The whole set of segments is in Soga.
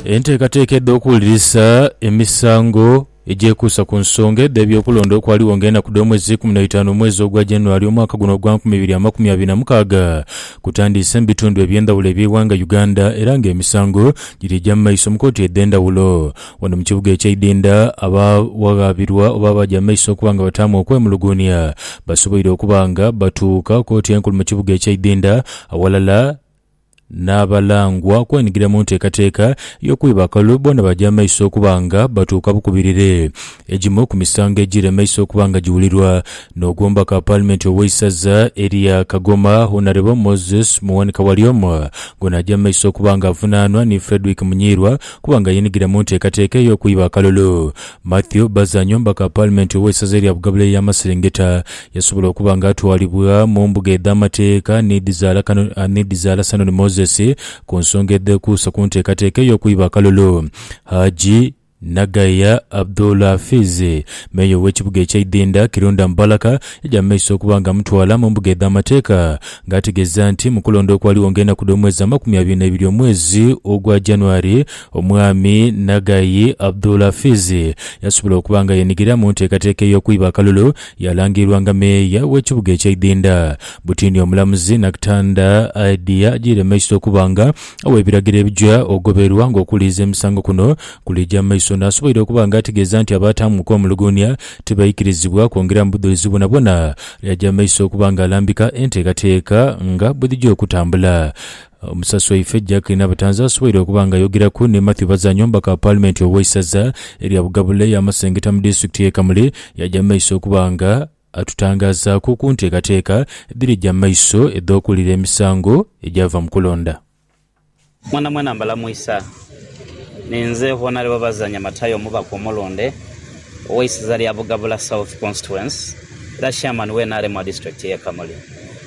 Enteekateeka edh'okuwulirisa emisango egyekuusa ku nsonga edh'ebyokulonda okwaligho ng'enaku dh'omwezi eikumi na itaanu omwezi ogwa January omwaka guno ogwa nkumi ibiri amakumi abiri na mukaaga kutandiise mu bitundu eby'endhawulo eby'eighanga Uganda era ng'emisango giri gya mu maiso mu kooti edh'endhawulo. Wano mu kibuga eky'eidinda abaawaghabirwa oba abaaja mu maiso okuba nga bataamu okwemuluguunia basoboire okuba nga batuuka kooti enkulu mu kibuga eky'eidinda awalala N'abalangwa okwenhigira mu nteekateeka y'okwiba akalulu boona baja mu maiso okuba nga batuuka bukubirire. Egimu ku misango egiri mu maiso okuba nga giwulirwa n'ogw'omubaka wa Paalimenti ow'eisaza erya Kagoma, Honarebo Moses Muwanika Walyoma ng'ono aja mu maiso okuba nga avunaanwa ni Fredrick Munyiirwa okuba nga yeenhigira mu nteekateeka ey'okwiba akalulu. Mathew Bazanyo omubaka wa Paalimenti ow'eisaza erya Bugabula Ey'amaserengeta Yasobola okuba nga atwalibwa mu mbuga edh'amateeka n'edhizaalasano ni Moses ku nsonga edhekuusa ku nteekateeka ey'okwiba akalulu. Haji Nagaya Abdul Hafiz, meeya ow'ekibuga eky'e Idinda, Kirunda Mubaraka, yaja mu maiso okuba nga amutwala mu mbuga edh'amateeka ng'ategeeza nti mu kulonda okwaligho ng'enaku dh'omwezi amakumi abiri n'ebiri omwezi ogwa January, Omwami Nagaya Abdul Hafiz yasobola okuba nga yeenhigira mu nteekateeka ey'okwiba akalulu. Yalangirwanga meeya w'ekibuga eky'eidinda. Butini omulamuzi Nakitanda aidhi ajiire maiso okuba nga ow'ebiragiro ebija ogoberwa nga okuwuliriza emisango kuno kulija maiso n'asoboire okuba nga ategeeza nti abaataamuku omuluguunia tibaikirizibwa kwongera mu budhulizi bwonabwona. Yaja maiso okuba nga alambika enteekateeka nga bwedhija okutambula. Omusasi waife Jack Nabatanzi asoboire okuba nga ayogeraku ni Mathew Bazanyo omubaka wa Paalimenti ow'eisaza erya Bugabula eya Masengeta mu disitulikiti y'e Kamuli yaja mu maiso okuba nga atutangazaaku ku nteekateeka edhirija mu maiso edh'okuwulira emisango egyava mu kulonda. Mwenamwena mbalamuisa. Ninze Honourable Bazanyo Matayo omubaka omulonde ow'eisaza lya Bugabula South Constituency era Chairman w'e nrm wa disitulikiti y'e Kamuli.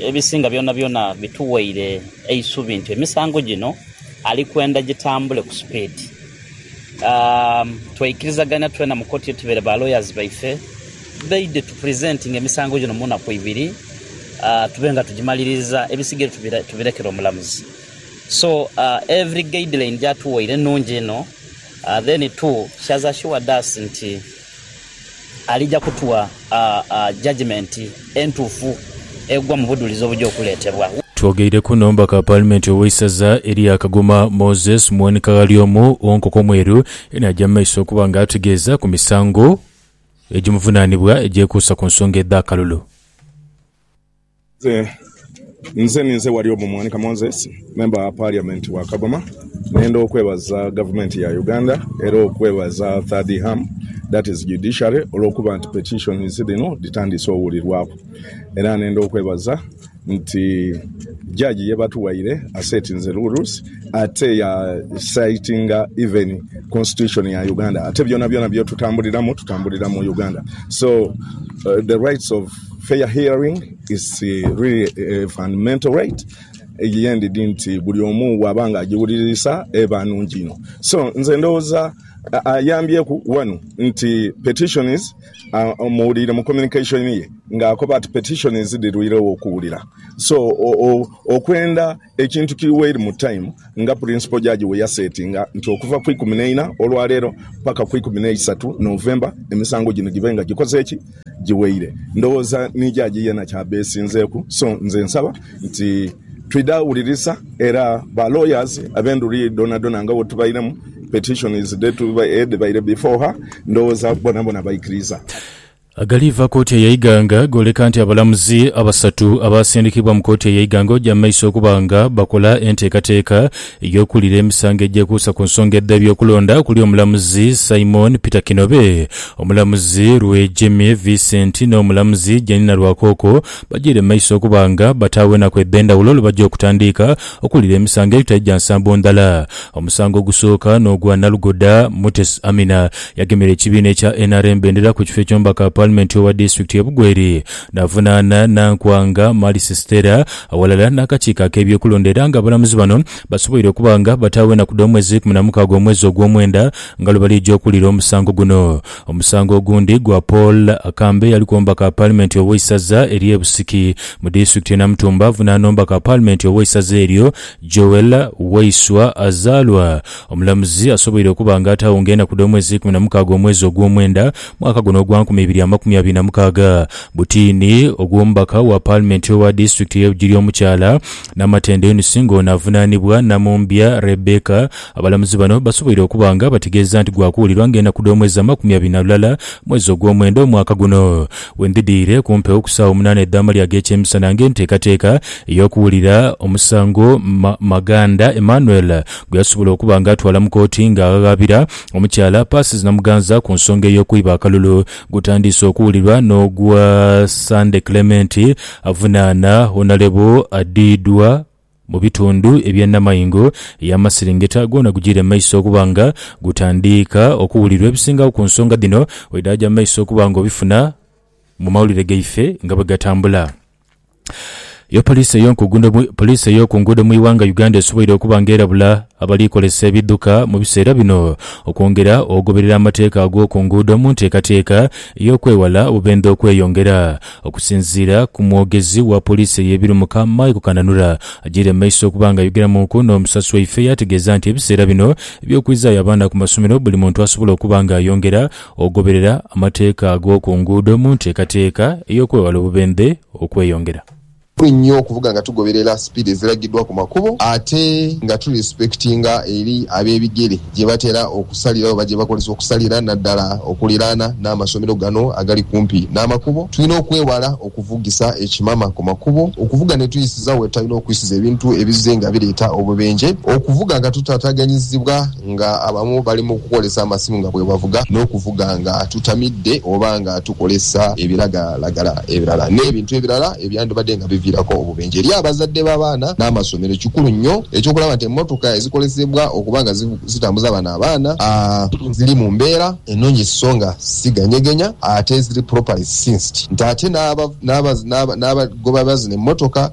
Ebisinga byonabyona bituweire eisubi nti emisango gino ali kwenda gitambule ku supiidi. Tweikirizagania twena mu koti yetubeire ba lawyers baife baide tu presentinge emisango gino mu naku ibiri tube nga tugimaliririza ebisigaire tubirekere omulamuzi. So every guideline gyatuweire nungi inho then too she has assured us nti Alija kutua judgement entuufu egwa mu budhulizi obuja okuletebwa. Twogeire ku nomba ka Paalimenti ow'eisaza erya Kagoma Moses Muwoni Kaghali omu wo nkoko mweru eno aja mu maiso okuba nga ategeeza ku misango egimuvunanibwa egyekuusa ku nsonga edh'akalulu. Nze nze ninze Warioba Mwanika Moses, Member wa Parliament wa Kagoma, nenda okwebaza Gavumenti ya Uganda era okwebaza Third Ham, that is Judiciary, olwokuba nti petitions dhino dhitandiise owulirwaku. Era nenda okwebaza nti Judge yebatuwaire asettinze rules ate ya citinga even Constitution ya Uganda ate byonabyona byetutambuliramu tutambulira mu Uganda so the rights of. Fair hearing is really a fundamental right ye ndidhi nti buli omu bwaba nga ajiwulirisa eba nungi inho. So nze ndhowooza ayambyeku wanu nti petition is aah muwuliire mu communication ye nga akoba ati petition is dhirwiiregho okuwulira so okwenda. Ekintu kiri weiri mu time nga purinsipo jaji weyasetinga nti okuva ku ikumi neina olwaleero paka ku ikumi neisatu November emisango gino gibe nga gikoze ki? Giweire. Ndowooza ni jaji yena kyabesinzeku so nze nsaba nti twidhe awulirisa era ba lawyers abendhuri dhonadhona nga wetubairemu petitions edhebaire before her ndowooza bonabona baikiriza. Agaliiva kooti eya Iganga gooleka nti abalamuzi abasatu abaasindikibwa mu kooti eya Iganga oja mu maiso okuba nga bakola enteekateeka ey'okuwulira emisango egyekuusa ku nsonga edh'ebyokulonda okuli omulamuzi Simon Peter Kinobe, omulamuzi Rwejemi Vincent n'omulamuzi Janina Rwakooko bajiire mu maiso okuba nga bataagho enaku edh'endhawulo lwe baja okutandiika okuwulira emisango egitali gya nsambo ndhala. Omusango ogusooka n'ogwa Nalugoda Mutesi Aminah. Yagemera ekibiina ekya nrm bendera ku kifo eky'omubaka Paalimenti owa disitulikiti ye Bugweri n'avunaana Nankwanga Marcy Stella aghalala n'akakiiko ak'ebyokulonda era nga abalamuzi bano basoboire okuba nga bataagho enaku dh'omwezi ikumi na mukaaga omwezi ogw'omwenda nga lwebalija okuwulira omusango guno. Omusango ogundi gwa Paul Akambe eyaliku omubaka Paalimenti ow'eisaza erye Busiki mu disitulikiti ye Namutumba avunaana omubaka Paalimenti ow'eisaza eryo Joel Waiswa azaalwa Omulamuzi asoboire okuba nga ataagho nga enaku dh'omwezi eikumi na mukaaga omwezi ogw'omwenda mwaka guno ogwa nkumi ibiri amakumi abiri na mukaaga, Butiini, ogw'omubaka wa paalimenti owa disitulikiti y'e Bugiri omukyala, Namatendo Eunice nga ono avunaanibwa Namumbya Rebecca. Abalamuzi bano basoboire okuba nga bategeeza nti gwa kuwulirwa nga enaku dh'omwezi amakumi abiri na lulala mwezi ogw'omwenda omwaka guno. We ndhidhirire ku mpewo ku saawa omunaana edh'amalya ag'ekyemisana nga enteekateeka ey'okuwulira omusango, Maganda Emmanuel, gwe yasobola okuba nga atwala mu kooti nga aghaghabira omukyala Persis Namuganza ku nsonga ey'okwiba akalulu, gutandiise okuwulirwa n'ogwa Sunday Clement avunaana Honalebo Adidwa mu bitundu ebye Namaingo ey'amaserengeta gwona gujiire mu maiso okuba nga gutandiika okuwulirwa ebisingagho ku nsonga dhino bwedhaaja mu maiso okuba nga obifuna mu mawulire gaife nga bwegatambula. Yo poliisi poliisi ey'oku nguudo mu ighanga Uganda esoboire okuba nga erabula abali kozesa ebidhuka mu biseera bino okwongera ogoberera amateeka ag'oku nguudo mu nteekateeka ey'okwewala obubendhe okweyongera. Okusinziira ku mwogezi wa poliisi ey'ebirumuka Michael Kananura agyeire mu maiso okuba nga ayogeramuuku n'omusasi waife yategeeza nti ebiseera bino eby'okwizaayo abaana ku masomero buli muntu asobola okuba nga ayongera Ogoberera amateeka ag'oku nguudo mu nteekateeka ey'okwewala obubendhe okweyongera. Kikulu inho okuvuga nga tugoberera sipiidi eziragidwa ku makubo ate nga tu lisipekitinga eri ab'ebigere gye batera okusalira oba gye bakozesa okusalira naddala okuliraana n'amasomero gano agali kumpi n'amakubo. Tulina okwewala okuvugisa ekimama ku makubo, okuvuga ne twisiza we tutalina okwisiza ebintu ebizze nga bireeta obubenje, okuvuga nga tutaataganyizibwa, Nga abamu bali mu kukozesa amasimu nga bwebavuga, n'okuvuga nga tutamidde oba nga tukozesa ebiragalalagala ebirala n'ebintu ebirala ebyandibadde nga biviirako obubenje. Eri abazadde b'abaana n'amasomero, kikulu nnyo eky'okulaba nti emmotoka ezikozesebwa okuba nga zitambuza bano abaana ziri mu mbeera enonyi sso nga si ganyegenya ate ziri properly synced nti ate n'abagoba bazino emmotoka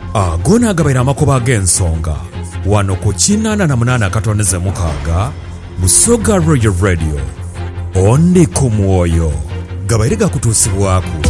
Ago naagabaire amakoba ag'ensonga wano ku kinaana na munaana akatondeze mukaaga Busoga Royal Radio. Ondi ku Mwoyo gabaire gakutuusibwaku.